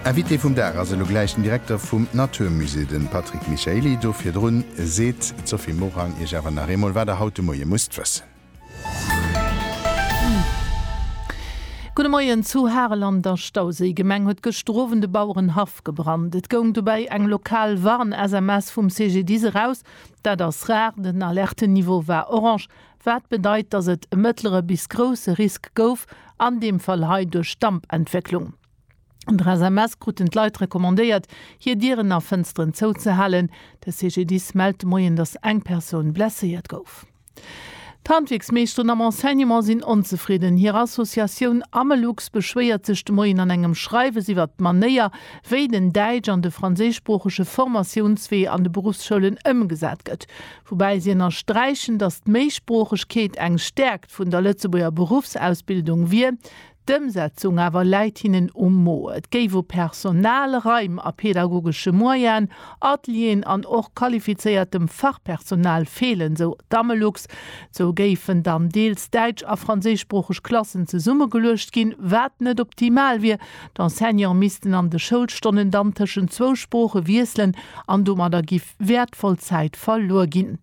Invité vum Dag ass elo gläich den Direkter vum Natur Musée, de Patrick Michaely. Do virdrun seet d'Sophie Morang iech awer nach eemol, wat der haut de Moie musst wëssen. Gudde Moien! Zu Harel an der Stauséigemeng huet gëschter Owend e Bauerenhaff gebrannt. Et goung dobäi eng lokal Warn-SMS vum CGDIS eraus. Dat ass rar, den Alertenniveau war orange, Wat bedeit, dass et e mëttlere bis grousse Risk gouf, an deem Fall hei duerch Dampentwécklung. An der SMS kruten d'Leit recommandéiert, hir Dieren a Fënsteren zouzehalen. De CGDIS mellt de Moien, dass eng Persoun blesséiert gouf. D'Handwierksmeeschteren am Enseignement sinn onzefridden. Hir Associatioun Amelux beschwéiert sech de Moien an engem Schreiwes iwwert d'Manéier, wéi den däitsch an de franséischsproochege Formatiounswee an de Beruffsschoulen ëmgesat gëtt. Woubäi si ënnersträichen, datt d'Méisproochegkeet eng Stäerkt vun der Lëtzebuerger Beruffsausbildung wier, d'Ëmsetzung awer läit hinnen um Mo. Et géif u Personal, Raim a pedagogesche Moyenen, Atelieren an och qualifizéiertem Fachpersonal feelen, sou d'Amelux. Sou géifen dann deels däitsch a franséischsproocheg Klassen zesummegeluecht ginn, wat net optimal wier. D'Enseignante missten an de Schoulstonnen dann tëschent zwou Sprooche wiesselen an domadder gi. wäertvoll Zäit verluer ginn.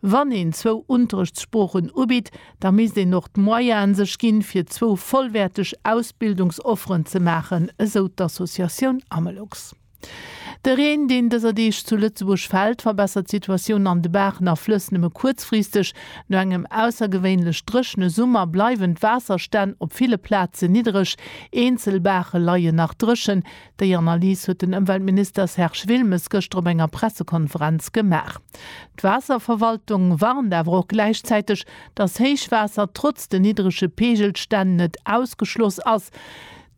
Wann een zwou Unterrichtssproochen ubitt, da misst een och d'Moyene sech ginn, fir zwou vollwäerteg Ausbildungsofferen ze maachen, esou d'Associatioun Amelux. De Reen, deen dëser Deeg zu Lëtzebuerg fält, verbessert d'Situatioun an de Baachen a Flëss nëmme kuerzfristeg. No engem aussergewéinlech dréchene Summer bleiwen d'Waasserstänn op ville Plaze niddreg. Eenzel Baache leien nach dréchen, Déi Analys huet den Ëmweltminister Serge Wilmes gëschter op enger Pressekonferenz gemaach. D'Waasserverwaltung warnt awer och gläichzäiteg, dass Héichwaasser trotz den niddrege Peegelstänn net ausgeschloss ass.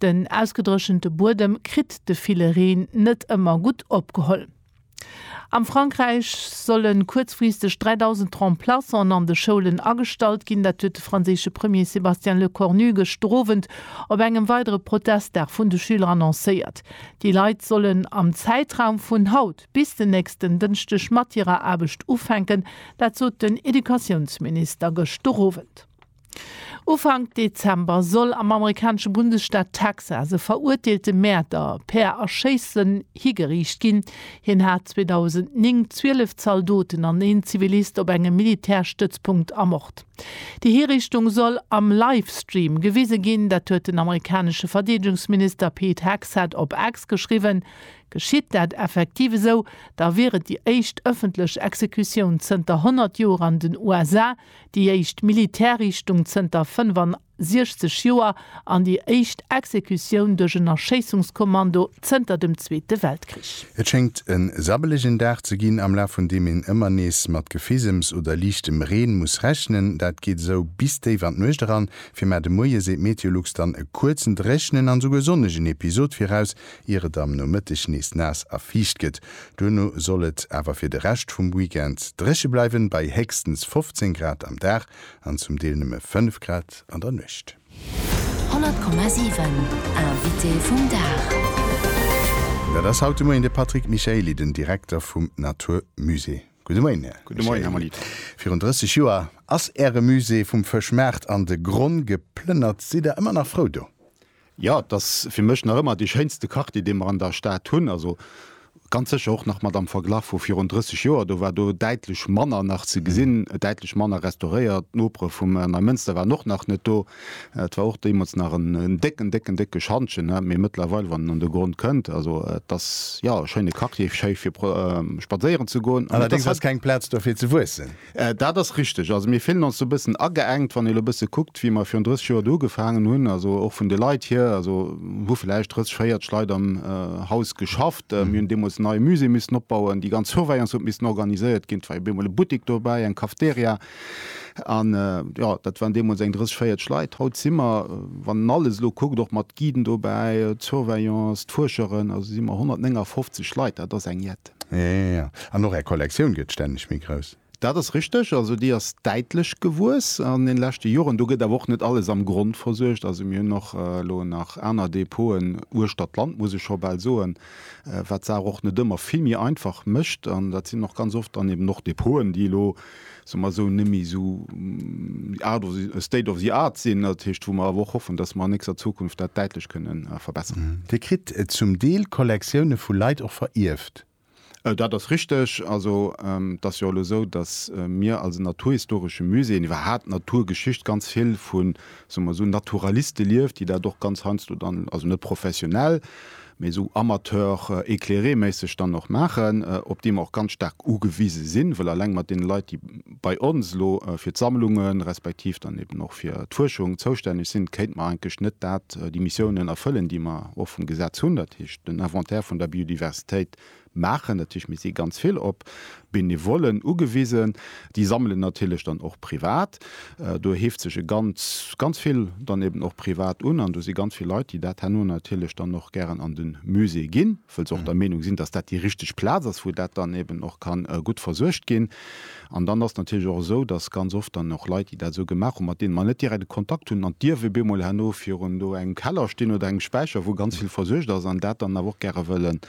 Den ausgedréchente Buedem kritt de ville Reen net ëmmer gutt opgeholl. Am Frankräich solle kuerzfristeg 3.000 Remplaçanten an de Schoulen agestallt ginn. Dat huet de franséische Premier Sébastien Lecornu gëschter Owend op engem weidere Protestdag vun de Schüler annoncéiert. Déi Leit sollen am Zäitraum vun haut bis den nächsten Dënschdeg mat hirer Aarbecht ufänken. Dat sot den Educatiounsminister gëschter Owend. Ufank Dezember soll am amerikanesche Bundesstaat Texas e verurteelte Mäerder per Erschéissen higeriicht ginn. Hien hat 2009 zwielef Zaldoten an een Zivilist op engem Militärstëtzpunkt ermort. Déi Hiriichtung soll am Livestream gewise ginn. Dat huet den amerikanesche Verdeedegungsminister Pete Hegseth op X geschriwwen. Geschitt dat effektiv esou, da wier et déi éischt ëffentlech Exekutioun zënter 100 Joer an den USA. déi éischt Militärriichtung zënter 65 Joer an déi éischt Exekutioun duerch en Erschéissungskommando zënter dem Zweete Weltkrich. Et schéngt en sabbelegen Dag ze ginn, am Laf vun deem een ëmmer nees mat Gefisems oder liichtem Reen muss rechnen. Dat geet esou bis déif an d'Nuecht eran. Fir mar de Moie seet Meteolux dann e kuerzen, dréchnen an esouguer sonnegen Episod viraus, ier et am Nomëtteg nees naass a fiicht gëtt. Duerno soll et awer fir de Rescht vum Weekend dréche bleiwen, bei héchstens 15 Grad am Dag an zum Deel nëmme 5 Grad an der Nuecht. 100,7 Invité vum Dag. Dat ass haut de Moien de Patrick Michaely, den Direkter vum Natur Musée. Gudde Moien, Här Michaely. Virun 30 Joer ass Äre Musée vum Fëschmaart an de Gronn geplënnert. Sidd Der ëmmer nach frou do? Jo, et ass fir mech nach ëmmer dee schéinste Quartier, dee mer an der Stad hunn. Also ganz sécher och nach mat am Verglach vu virun 30 Joer. Do war do däitlech manner nach ze gesinn, däitlech manner restauréiert. D'Nopere vum Neimënster waren och nach net do. Et war och deemools nach en décken, décken, décke Schantjen. Mee mëttlerweil, wann een an de Gronn kënnt, also et ass, jo, e schéine Quartier, schéi fir spadséieren ze goen. Allerdéngs ass keng Plaz do fir ze wuessen. Dat ass richteg. Also mir fillen ons do e bëssen ageengt, wann ee elo e bësse kuckt, wéi mer virun 30 Joer do ugefaangen hunn. Also och vun de Leit hier, also hu vläicht 30, 40 Leit am Haus geschafft. Mir hunn deemools en neie Musée missen opbauen, déi ganz Surveillance huet missen organiséiert ginn, et war jo op eemol e Buttik dobäi, eng Cafteria an jo, dat waren deemools eng 30, 40 Leit. Haut si mer, wann een alles elo kuckt, och mat Guiden dobäi, d'Surveillance, d'Fuerscheren, also si mer 159 Leit. Dat ass eng jett. Ja, ja, ja. An och Är Kollektioun gëtt stänneg méi grouss. Dat ass richteg. Also déi ass däitlech gewuess an den leschte Joren. Do gëtt awer och net alles am Grond versuergt. Also mir hunn och elo nach aner Depoten uechter d'Land, muss ech scho bal soen, wat d'Saach och net ëmmer vill méi einfach mécht. An dat sinn och ganz oft dann eben och Depoten, déi elo soe mer esou, net méi esou state of the art sinn, dat heescht, wou mer awer och hoffen, datt mer an nächster Zukunft dat däitlech kënne verbessern. Dir kritt zum Deel Kollektioune vu Leit och verierft? Dat ass richteg. Also et ass jo elo esou, datt mir als Naturhistoresche Musée, iwwerhaapt d'Naturgeschicht, ganz vill vu soe mer esou, Naturaliste lieft, déi dat och ganz heiansdo dann, also net professionell, mee esou amateur-éclairé-méisseg dann och maachen, op déi mer och ganz staark ugewise sinn, wëll alleng mat deene Leit, déi bei ons elo fir d'Sammlungen, respektiv dann eben och fir d'Fuerschung zoustänneg sinn, kéinte mer eigentlech net dat, déi Missiounen erfëllen, déi mer och vum Gesetz hunn, dat heescht den Inventaire vun der Biodiversitéit Maachen, dat heescht mir si ganz vill op Benevollen ugewisen, déi sammelen natierlech dann och privat, do heeft sech e ganz, ganz vill dann eben och privat un an do si ganz vill Leit, déi dat herno natierlech dann och gären an de Musée ginn, wëll se och der Meenung sinn, datt dat déi richteg Plaz ass, wou dat dann eben och kann gutt versuergt ginn. An dann ass et natierlech och esou, datt ganz oft dann och Leit, déi dat esou gemaach hunn, mat deene mer net direkt e Kontakt hunn, dann dierf ebeemol herno virun do engem Keller stinn oder engem Späicher, wou ganz vill versuergt ass, an dat dann awer och gäre wëllen.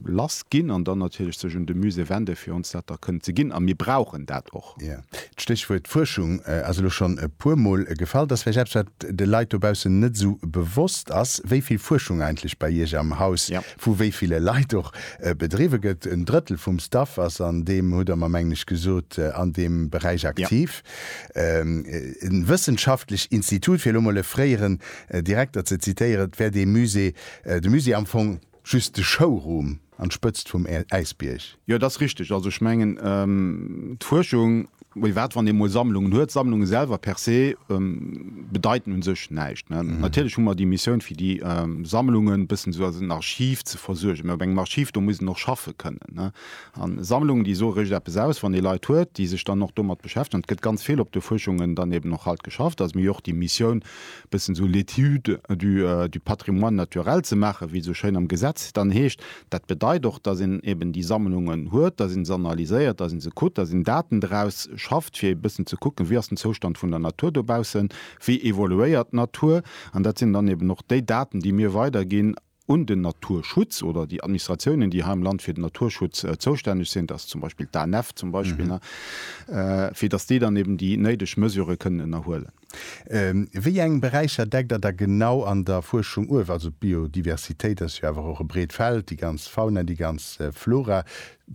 lass ginn an dann natierlech sech un de Musée wende fir ons dat da kënnen ze ginn. A mir brauchen dat och. Jo, d'Stéchwuert Fuerschung ass elo schonn e puermol gefall. Dat ass vläicht eppes, wat de Leit dobaussen net esou bewosst ass, wéi vill Fuerschung eigentlech bei Iech am Haus vu wéi ville Leit och bedriwwe gëtt. En Drëttel vum Staff ass an deem, hutt Der mer mengen ech gesot, an deem Beräich aktiv. E wëssenschaftlech Institut, fir elo mol e fréieren Direkter ze zitéieren, wär dee Musée De Musée am Fong just de Showroom an d'Spëtzt vum Äisbierg. Jo, et ass richteg. Also ech mengen d'Fuerschung, wéi wat wann ee mol Sammlungen huet. Sammlunge selwer per se bedeiten u sech näischt. Natierlech hu mer déi Missioun fir déi Sammlungen e bëssen esou als en Archiv ze versuergen. Mä op engem Archiv, do muss een och schaffe kënnen. An Sammlungen, déi soe réischt eppes aus, wann ee Leit huet, déi sech dann och domat beschäftegen. An et gëtt ganz vill op de Fuerschungen dann eben och haut geschafft. Dass mir jo och déi Missioun bëssen esou l'Étude du du patrimoine naturel ze maachen, wéi et esou schéin am Gesetz dann heescht. Dat bedeit och, dass een eben déi Sammlungen huet, dass een se analyséiert, dass een se kuckt, dass een Daten draus schafft, fir ee bëssen ze kucken, wéi ass den Zoustand vun der Natur dobaussen, wéi evoluéiert d'Natur. An dat sinn dann eben och déi Daten, déi mir weiderginn. un den Naturschutz oder déi Administratiounen, déi hei am Land fir den Naturschutz zoustänneg sinn, dat ass zum Beispill d'ANF zum Beispill, fir datt déi dann eben déi néideg Mesurë kënnen ënnerhuelen. Wéi eng Beräicher deckt Der da genau an der Fuerschung uew? Also d'Biodiversitéit ass jo awer och e breet Feld, déi ganz Fauna, déi ganz Flora.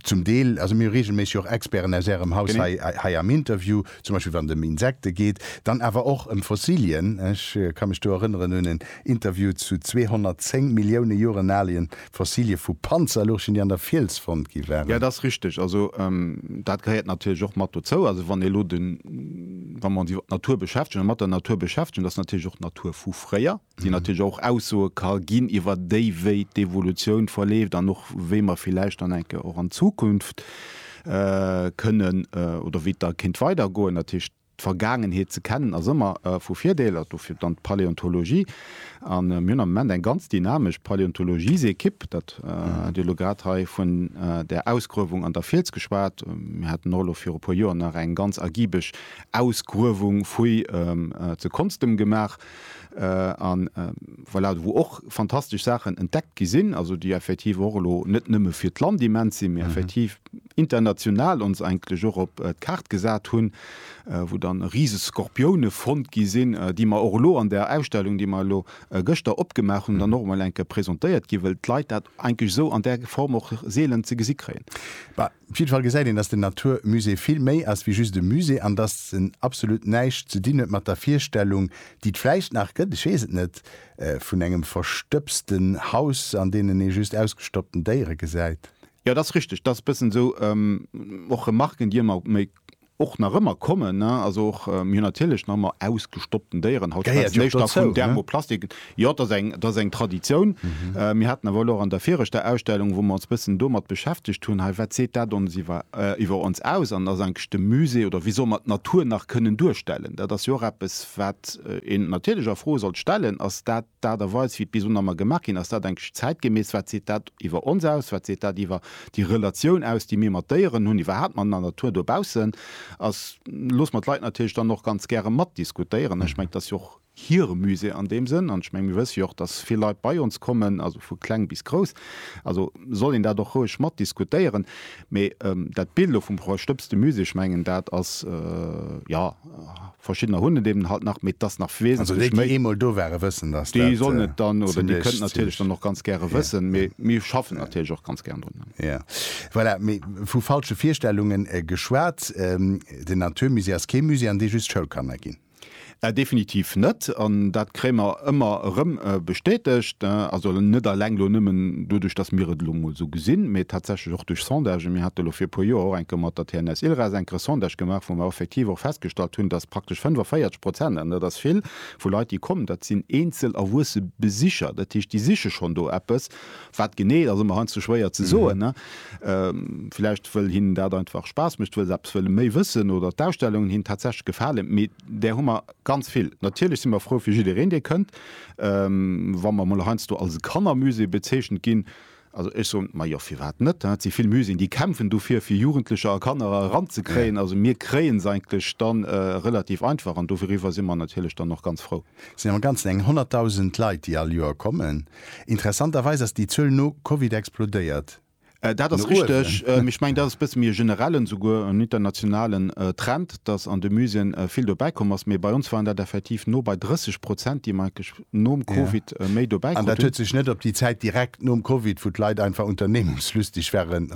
Zum Deel, also mir hu reegelméisseg och Experten aus Ärem Haus hei am Interview, zum Beispill wann et ëm Insekte geet, dann awer och ëm Fossilien. Ech ka mech do erënneren un en Interview zu 210 Millioune Joren alie Fossilie vu Panzerlurchen, déi an der Fiels fonnt gi waren. Jo, dat ass richteg. Also dat gehéiert natierlech och mat dozou. Also wann ee elo de, wa mer ons iwwer d'Natur beschäftegen a mat der Natur beschäftegen, dat ass natierlech och d'Natur vu fréier. déi natierlech och Aussoe ka ginn iwwer déi, wéi d'Evolutioun verleeft an och wéi mer villäicht dann enke och an Zukunft kënnen oder wéi et da kéint weidergoen. Dat heescht, d'Vergaangenheet ze kennen ass ëmmer vu Virdeel, dofir dann d'Paläontologie. A mir hunn am Moment eng ganz dynamesch Paläontologiesequipe, dat hat Dir elo grad hei vun där Ausgruewung an der Fiels geschwat. Mir haten och elo viru puer Joer nach eng ganz ergibeg Ausgruewung, Fouille, zu Konstem gemaach. A voilà, wou och fantastesch Saachen entdeckt gi sinn, also déi effektiv och elo net nëmme fir d'Land immens sinn, mee effektiv international ons eigentlech och op d'Kaart gesat hunn, wou dann rise Skorpioune fonnt gi sinn, déi mer och elo an där Ausstellung, déi mer elo gëschter opgemaach hunn, dann och emol eng Kéier presentéiert ginn, well d'Leit dat eigentlech esou an där Form och seelen ze gesi kréien. Op jidde Fall gesäit een, dass den Natur Musée vill méi ass wéi just e Musée an dass en absolut näischt ze dinn huet mat der Virstellung, déi et vläicht nach gëtt, ech weess et net, vun engem verstëbsten Haus, an deenen ee just ausgestoppten Déiere gesäit. Jo, et ass richtig, et ass e bëssen esou. Och Remarken, déi ëmmer méi Och nach ëmmer kommen, also och mir hunn natierlech nach ëmmer ausgestoppten Déieren. Haut schwätze mir éischter vun Thermoplastiken. Jo, dat ass eng Traditioun. Mir haten awer elo och an der viregter Ausstellung, wou mer ons e bëssen domat beschäftegt hunn, hei, wat seet dat ons iwwer ons aus? An ass eigentlech de Musée oder wéi soll mer d'Natur nach kënnen duerstellen? Dat ass jo och eppes, wat een natierlech a Fro sollt stellen, ass dat, d'Aart a Weis, wéi d'Bisonammer gemaach ginn, ass dat enklech zäitgemäss? Wat seet dat iwwer ons aus? Wat seet dat iwwer déi Relatioun aus, déi mir mat Déieren hunn, iwwerhaapt mat der Natur dobaussen? A loosse mer d'Leit natierlech dann och ganz gäre matdiskutéieren. Ech mengen, et ass jo och hire Musée an deem Sënn. An ech mengen, mir wësse jo och, dass vill Leit bei ons kommen, also vu kleng bis grouss. Also soll een dat och roueg matdiskutéieren. Mee dat Bild elo vum verstëbste Musée, ech mengen, dat ass, jo, Verschiddener hunn et eben halt nach, mee t'ass nach wesentlech méi. Also déi, déi eemol do ware wëssen, dass dat zimmlech. Déi sollen et dann, oder déi kënnten natierlech dann och ganz gäre wëssen, mee mir schaffen natierlech och ganz gär drun. Jo, voilà. Mee vu falsche Virstellunge geschwat, den Naturmusée ass kee Musée, an dee just Schoulkanner ginn. Definitiv net. An dat kréie mer ëmmer erëm bestätegt, also net eleng elo nëmmen doduerch, datt mir et elo emol esou gesinn, mee tatsächlech och duerch Sondagen. Mir hate elo vir e puer Joer och eng Kéier mat der TNS ILRAS eng Kéier Sondage gemaach, wou mer effektiv och festgestallt hunn, datt praktesch 45 Prozent, an dat ass vill, vu Leit, déi kommen, dat sinn eenzel erwuesse Besicher. Dat heescht, déi siche schonn do eppes. Wat genee, dat ass ëmmer heiansdo schwéier ze soen. Villäicht wëll hinnen dat einfach Spaass mécht, wëll se eppes wëlle méi wëssen oder d'Ausstellungen hinnen tatsächlech gefalen. Mee där hu mer Ganz vill. Natierlech si mer frou fir jiddereen, dee kënnt. Wa mer mol heiansdo als Kannermusée bezeechent ginn, also ech soen, majo, firwat net? Et si vill Muséeën, déi kämpfen dofir, fir Jugendlecher a Kanner eranzekréien. Also mir kréien se eigentlech da relativ einfach an doriwwer si mer natierlech dann och ganz frou. Et sinn am Ganzen eng 100.000 Leit, déi all Joer kommen. Interessanterweis ass déi Zuel no Covid explodéiert. Dat ass richteg. Ech mengen, dat ass e bësse méi e generellen, souguer en internationalen Trend, datt an de Muséeën vill dobäi komm ass. Mee bei ons waren dat effektiv no bei 30 Prozent, déi mer entlech nom Covid méi dobäi krut hunn. An dat huet sech net op déi Zäit direkt nom Covid, wou d'Leit einfach unternehmungslustig waren,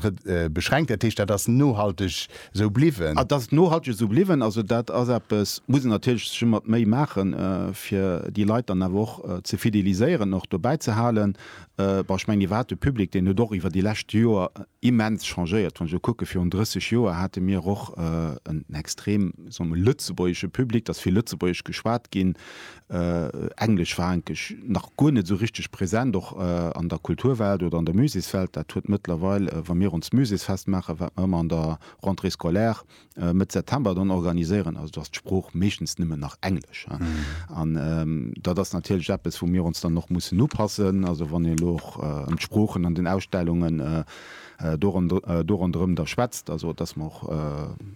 beschränkt. Dat heescht, dat ass nohalteg esou bliwwen. Dat ass nohalteg esou bliwwen. Also dat ass eppes, muss een natierlech sech ëmmer d'Méi maachen, fir déi Leit dann awer och ze fideliséieren, och dobäi ze halen. Bon, ech mengen, Dir waart e Public, deen huet och iwwer déi lescht Joer immens changéiert. Wann ech elo kucke virun 30 Joer hate mir och en extrem, soe mer, lëtzebuergesche Public, dass vill Lëtzebuergesch geschwat ginn, Englesch war eigentlech nach guer net esou richteg present, och an der Kulturwelt oder an der Musékswelt. Dat huet mëttlerweil, wa mir ons Muséksfest maachen, wat mer ëmmer an der Rentrée scolaire, Mëtt September dann organiséieren. Also do ass d'Sprooch meeschtens nëmmen nach Englesch. An dat ass natierlech eppes, wou mir ons dann och mussen upassen. Also wann een elo och ëm d'Sproochen an den Ausstellungen do ronderëm da schwätzt, also datt mer och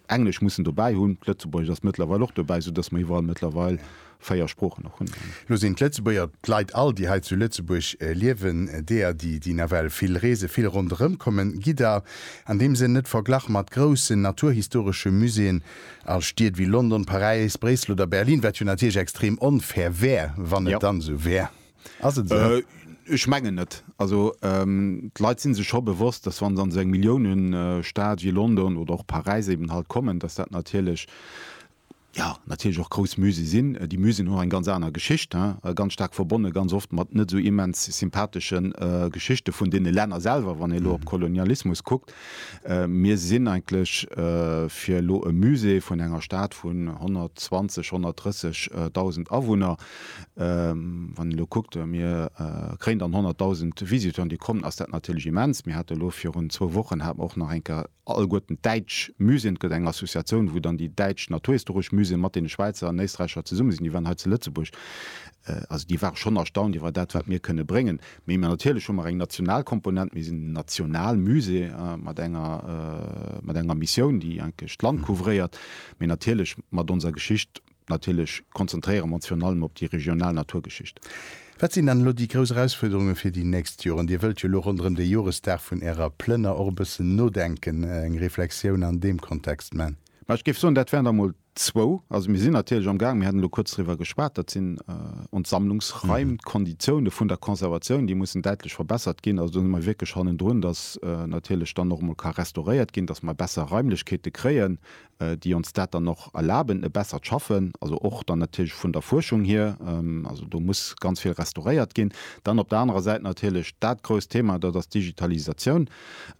Englesch mussen dobäi hunn. Lëtzebuergesch ass mëttlerweil och dobäi, soudatt mer iwwerall mëttlerweil 4 Sproochen och hunn. Lo sinn d'Lëtzebuerger, d'Leit all, déi hei zu Lëtzebuerg liewen, deeër, déi, déi nawell vill reesen, vill ronderëm kommen. Gidder an deem Sënn net verglach mat groussen naturhistoresche Muséeën a Stied wéi London, Paräis, Bréissel oder Berlin, wat jo natierlech extrem onfair wär, wann et dann esou wär. Ass et esou? Ech mengen net. Also d'Leit si sech scho bewosst, dass wa se an esou eng Milliounenstad wéi London oder och Paräis eben halt kommen, dass dat natierlech jo natierlech och grouss Musée sinn. Déi Museen hunn och eng ganz aner Geschicht, ganz staark verbonne ganz oft mat net esou immens sympathesche Geschichte vun deene Länner selwer, wann ee elo op Kolonialismus kuckt. Mir sinn eigentlech fir elo e Musée vun enger Stad vun 120, 130 Dausend Awunner, wann een elo kuckt, mir kréien dann 100 Dausend Visiteuren, déi kommen, ass dat natierlech immens. Mir hate elo virun zwou Wochen hate mer och nach eng Kéier Alleguerten d'däitsch Museen, et gëtt eng Associatioun, wou dann déi däitsch naturhistoresch Museen mat deene Schwäizer an Éisträicher zesumme sinn, déi waren hei zu Lëtzebuerg. Also déi ware schonn erstaunt iwwer dat, wat mir kënne bréngen. Mee mir natierlech hu mer eng national Komponent, mir sinn en national Musée mat enger, mat enger Missioun, déi eigentlech d'Land couvréiert, mee natierlech mat onser Geschicht, Natierlech konzentréiere mer ons virun allem op déi regional Naturgeschicht. Wat sinn dann elo déi grouss Erausfuerderunge fir déi nächst Joren? Dir wëllt jo elo ronderëm de Joresdag vun Ärer Plënner och e bëssen nodenken, eng Reflexioun an deem Kontext man. Ma ech géif soen, dat wären der emol zwou. Also mir sinn natierlech am Gaang, mir haten elo kuerz driwwer geschwat, dat sinn ons Sammlungsraim, d'Konditioune vun der Conservatioun, déi mussen däitlech verbessert ginn. Also do si mer wierklech hannendrun, datt natierlech dann och emol ka restauréiert ginn, datt mer besser Raimlechkeete kréien, déi ons dat dann och erlaben, e bessert Schaffen, also och dann natierlech vun der Fuerschung hier, also do muss ganz vill restauréiert ginn. Dann op der anerer Säit natierlech dat grousst Thema, dat ass d'Digitalisatioun,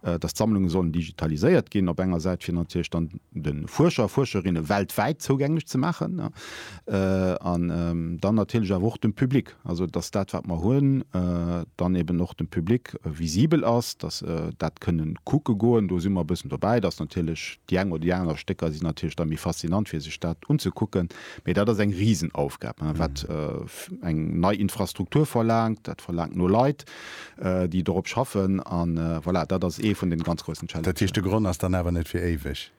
dass d'Sammlunge sollen digitaliséiert ginn op enger Säit, fir natierlech dann de Fuerscher a Fuerscherinne weltwäit zougänglech ze maachen, an dann natierlech awer och dem Public. Also dass dat wat mer hunn dann eben och dem Public visibel ass, dass se dat kënne kucke goen. Do si mer e bëssen dobäi, dass natierlech déi eng oder déi aner Stécker si natierlech da méi faszinant fir sech dat unzekucken. Mee dat ass eng Risenaufgab wat eng nei Infrastruktur verlaangt. Dat verlaangt no Leit déi dorop schaffen an voilà dat ass ee vun den ganz groussen Challengen. Dat heescht de Gronn ass dann awer net fir éiweg?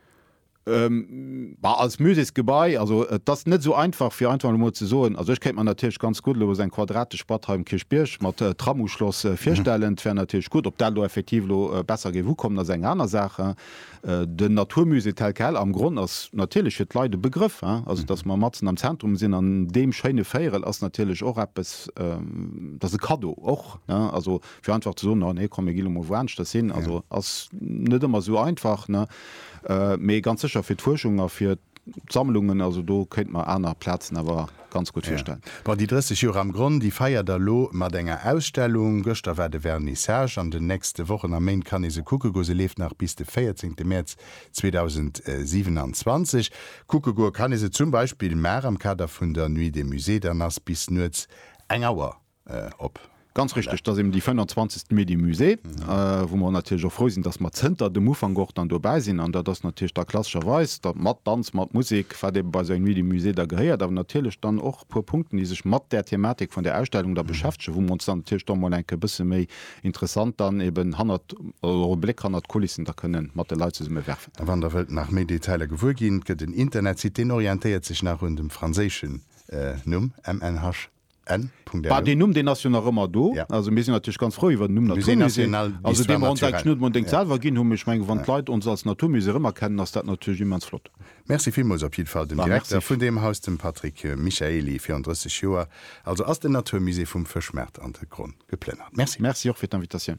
Bah, als Muséksgebai, also et ass net esou einfach, fir einfach elo emol ze soen. Also ech kéint mer natierlech ganz gutt elo esou eng quadratesch Batt hei um Kierchbierg mat Tramuschloss virstellen. Dat wär natierlech gutt. Ob dat elo effektiv elo besser géif ukommen, ass eng aner Saach. Den Naturmusée tel quel am Gronn ass natierlech fir d'Leit e Begrëff. Also datt mer matzen am Zentrum sinn an deem schéine Véierel ass natierlech och eppes, dat ass e Kaddo och. Also Fir einfach ze soen, no nee, komm mir gi lo mol wouaneschtes hin, also ass net ëmmer esou einfach, ne? Mee ganz sécher fir d'Fuerschung a fir d'Sammlungen, also do kéinte mer aner Plazen awer ganz gutt virstellen. Bon, déi 30 Joer am Gronn, déi feiert der elo mat enger Ausstellung. Gëschter war de Vernissage. An den nächste Wochen a Méint kann ee se kucke goe. Se leeft nach bis de 14 Mäerz 2027. Kucke goe kann ee se zum Beispill mar am Kader vun der Nuit des Musées. Dann ass bis nuets eng Auer op. Ganz richteg, dass eben déi 25. Mee de Musée, wou mer natierlech och frou sinn, dass mer zënter dem Ufank och dann dobäi sinn an dat ass natierlech da klassescherweis da mat Danz, mat Musek, wat ebe bei esou eng Nuit du Musée da gehéiert, awer natierlech dann och e puer Punkten, déi sech mat där Thematik vun där Ausstellung da beschäftegen, wou mer ons dann natierlech da mol enke bësse méi interessant dann eben hannert, oder e Bléck hannert d'Kulissen da kënne mat de Leit zesumme werfen. A wann Der wëllt nach méi Detailer gewuer ginn, et gëtt en Internetsite, deen orientéiert sech nach un dem franséischen Numm, MNHB. Deen Numm deen ass jo nach ëmmer do. Also mir sinn natierlech ganz frou iwwer den Numm Naturmusée. Musée national d'histoire naturelle. Deen huet mer entdéngt selwer ginn, ech menge wann d'Leit ons als Naturmusée erëmerkennen, ass dat natierlech immens flott. Merci villmools op jiddwer Fall dem Direkter vun deem Haus, dem Patrick Michaely, virun 30 Joer also ass den Naturmusée vum Fëschmaart an de Gronn geplënnert. Merci. Merci och fir d'Invitatioun.